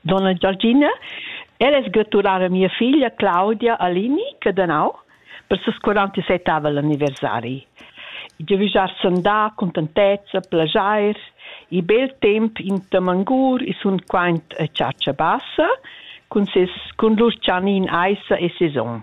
donna Giorgina. Ella es gratulada a mia figlia Claudia Alini, Cadanau, per ses 47 avel anniversari. Giavüschar sandà, contentezza, plajair, i bel temp in Tamangur e sun quaint a Chatscha Bassa cun ses cun lur chanin aissa e saison.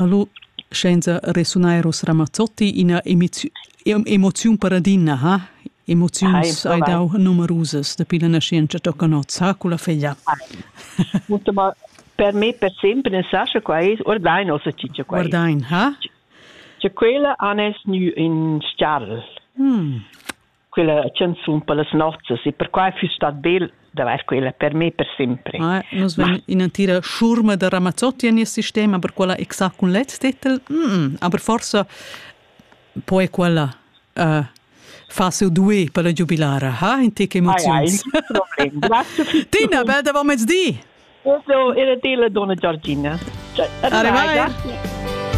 Hallo, scienza resunair os Ramazzotti ina emoziun paradina, ha? Emoziuns hai dau numerusas dapi la nascienza tocca not, sa culla feglia. Ma per me per sempre ne sa sche quai ist oder dein ossa cicia quai. Oder dein, ha? Che quella anes nu in stjarl. Hmm. quella canzun per las nozzas e perquai füss stat bel d'avair quella per me per sempre. Ah, nus vegn in'entira schurma da Ramazzotti en il sistema, per quella exact cun lez titel, mm -mm, aber forse poi quella uh, fa seu due per la giubilara. Ha, in te che emozions. Tina, bel da mezdi! Io era della donna Giorgina. Arrivai!